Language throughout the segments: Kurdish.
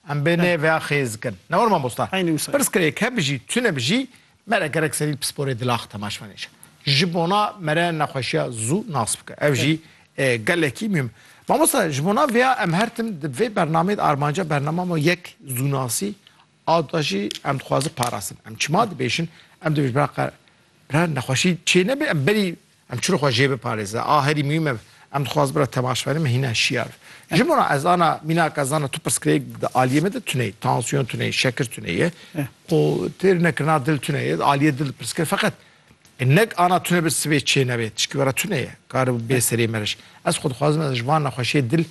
Em bê nê vêya xêz kin. Ne war mamosta. Eynî wisa ye. Pirs kir êke bijî, tu ne bijî, mere gerek serî li pisporê dilax te ma ji me nêşe. Ji bona mere nexweşiya zû nas bike. Ev jî gelekî mûhim. Mamosta ji bona vêya em her tim di vê bernameyê de armanca bernama ma yek zûnasî a da jî em dixwazin parastin. Em çima dibêjin, em dibêjin bira qe bira nexweşî çê nebê em berî Em çi li xwe jê biparêze. A herî muhîm ev em dixwaz bira temaşevanê me hîna şiyar. Ji min re ez ana mînaka zana tu pirsgirêk bide aliyê me de tuneyî, tansiyon tuneyî, şekir tuneyî, qo têr nekirina dil tuneyî, aliyê dil dipirsgir feqet nek ana tune bi sibê çê nebe tişkî were tuneyî kare bi bê serê meriş. Ez xwe dixwazim ez ji van nexweşiyê dil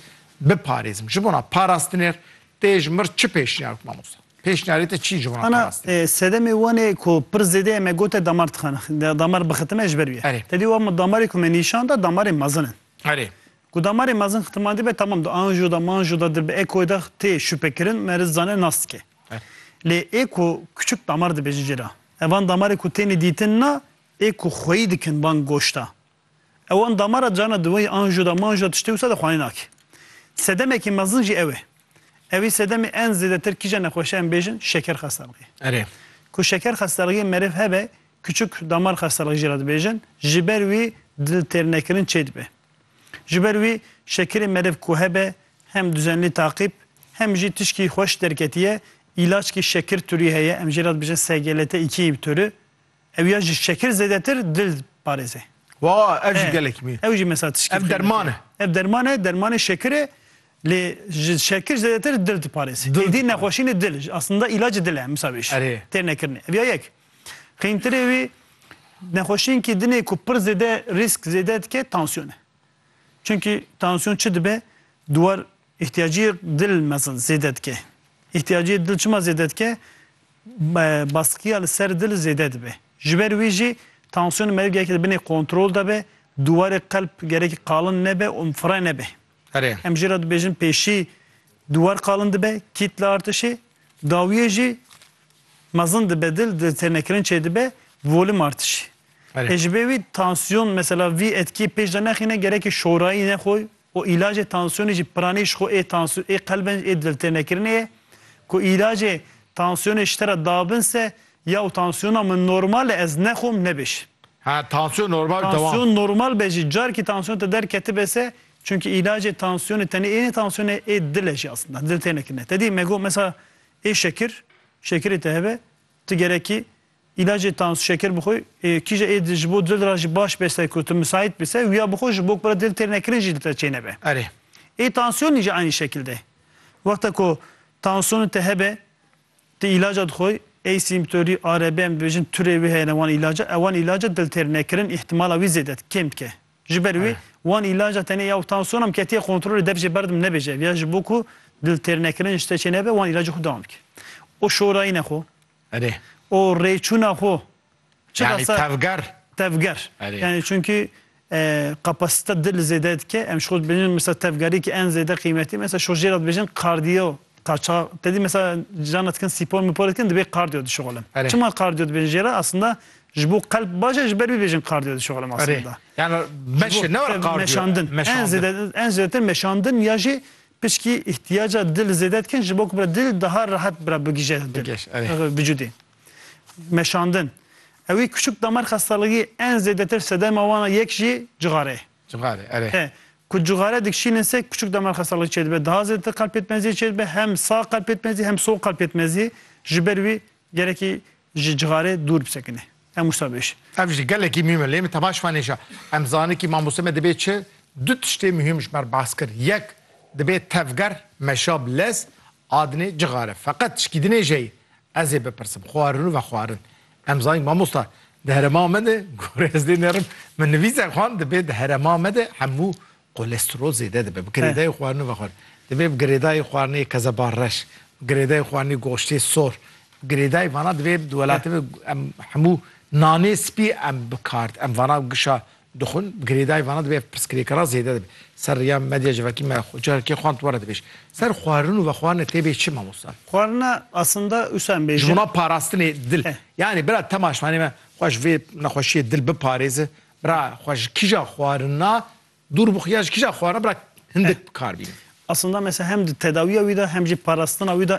biparêzim. Ji bo na parastinêr Tê ji mir çi pêşniyar bike mamosta? Pêşniyarê te çi ji wan Ana xerast e? sedemê wan ê ku pir zêde em e got e damar dixan damar bixitime ji ber wî ye. Erê. Te dî wan min damarê ku me nîşan da damarê mezin in. Erê. Ku damarê mezin xitiman dibe temam di anjo da manjo da di bi ekoyê da tê şupekirin me risk zane nas dike. Erê. Lê ê ku kuçik damar dibêjin jê re. Evan damarê ku têne dîtin na ê ku xweyî dikin van goşta. Ew an damara carna diweyî an jo da man jo tiştê wisa de xwanî nake. Sedemekî mezin jî ew e. Ewî sedemê en zêdetir kîja nexweşe em bêjin şeker xestelxî. Erê. Ku şeker xestelxîyê merêv hebe küçük damar xestelxî jî re dibêjin, ji ber wî dil têr nekirin çê dibe. Ji ber wî şekerê merêv ku hebe hem duzenlî taqîb hem jî tişkî xweş derketiye îlaçkî şekir turî heye em jê re dibêjin SGLT-2 inhibitörü, Ew ya ji şekir zêdetir dil diparêze. Wa, ev jî gelek mî. Ew jî mesela tişkî. Ev derman e. Ev derman e, dermanê şekir e. Lê ji şekir zêdetir dil diparêze. Êdî nexweşînê dil, aslında îlacê dil e misa wê jî. Erê. Têr nekirine. Ev ya yek. Qîntirê wî nexweşînkî dinê ku pir zêde rîsk zêde dike tansiyon e. Çimkî tansiyon çi dibe? Duwar Îhtiyacî dil mezin zêde dike. Îhtiyacî dil çima zêde dike? Baskiya li ser dil zêde dibe. Ji ber wî jî tansiyona merivê gerekî di binê kontrol de be, dûwarê qelb gerekî qalin nebe û fire nebe. Em jê re dibêjin pêşî dûwar qalin dibe, kîtla artişê, dawiyê jî mezin dibe dil, di têrnekirin çêdibe, volüm artişê. Ê ji ber wî tansiyon mesela vî etkî pêş de nexîne gerekî şorayî nexwe Ku îlacê tansiyonê jî piranî ji xwe ê tansiyon ê qelbên ê diltênekirinê ye. Ku îlacê tansiyonê ji te re dabin se ya û tansiyona min normal e ez nexwim nebe jî. Ha tansiyon normal dewam. Tansiyon normal be jî carekî tansiyon te derketibe se çunkî îlacê tansiyonê tenê ê ne tansiyonê ê dil e jî aslında diltênekirine te dî me got mesela ê şekir şekirê te hebe ti gerekî Îlacê tans, şeker bixwe, kîje ê ji bo dil re jî baş bese ku tu misaît bî se, wiya bixwe ji bo ku bira dil têr nekirin jî li te çê nebe. Erê. Ê tansiyonî jî eynî şekil de. Wexta ku tansiyonê te hebe, tu îlaca dixwe, ey sîmptorî, ARB em dibêjin, turê wê heye ne wan îlaca, ew wan îlaca dil têr nekirin îhtîmala wî zêde di, kêm dike. Ji ber wê, wan îlaca tenê ya ku tansiyona min ketiye kontrolê dev jê berdim nebêje, ev ya ji bo ku dil têr nekirin ji te çê nebe, wan îlacê xwe dewam bike. O şorayîne xwe. Erê. O rêçûna xwe çi da ser. Yani tevger. Tevger. Erê. Yani çünkü kapasite dil zêde dike. Em ji xwe dibêjin mesela tevgerî ki en zêde qîmetî mesela ji jê re dibêjin kardiyo. Kaça te dî mesela cana dikin spor mipor dikin dibê kardiyo dişixulin. Çima kardiyo dibêjin jê re aslında ji bo qelb baş e ji ber vî bêjin kardiyo dişixulin aslında. Erê. Yani meşe ne were kardiyo. Meşandin. En zêde en zêdetir meşandin ya jî Pişkî îhtiyaca dil zêde dikin ji bo ku bira dil daha rehet bira bigije dil vücudê. Meşandin. Ewî kuşik damar xestaligi en zêdetir sedema wan a yek jî cixare ye. Cixare erê. He. Ku cixare dikşînin se kuşik damar xestaligi çêdibe. Daha zêdetir qelb pêtmeziyê çêdibe. Hem sağ qelb pêtmezî hem sol qelb pêtmezî ji ber wî gerekî ji cixarê dûr bisekine. Em wisa bêjin. Ev jî gelekî mihim e. Lê min tevaş venêja. Em zanin kî mamostê me dibê çi? Du tiştê mihim ji ber behs kir. Yek, dibê tevger, meşab, lez, adinê, cixare. Feqet tişkî dinêje yê. Ez ê bipirsim. Xwarin û vexwarin. Em zanin kî mamosta di herêma me de, gorê ez dê nerim, min nivîs e xwend, dibê di herêma me de hemû Kolesterol zêde dibe, bi girêdayî xwarinê ve xwarin. Divê bi girêdayî xwarinê kezeba reş, bi girêdayî xwarinê goştê sor, bi girêdayî vana divê di welatê ve em hemû nanê spî em bi kar em vana gişa dixwin, bi girêdayî vana divê ev pirsgirêkara zêde dibe. Ser rêya medya civakî me xwe carekê xwend were dibêj. Ser xwarin û vexwarinê tê bê çi Mamosta? Xwarina aslında wisa em bêjin. Ji bo parastinê dil. Yanî bira temaşvanê me xwe ji vê nexweşiyê dil biparêze Bira xwe ji kija xwarina dûr bixwe ya ji kija xwarina bira hindik bi kar bînin. Aslında mesela hem di tedawiya wî de hem jî parastina wî de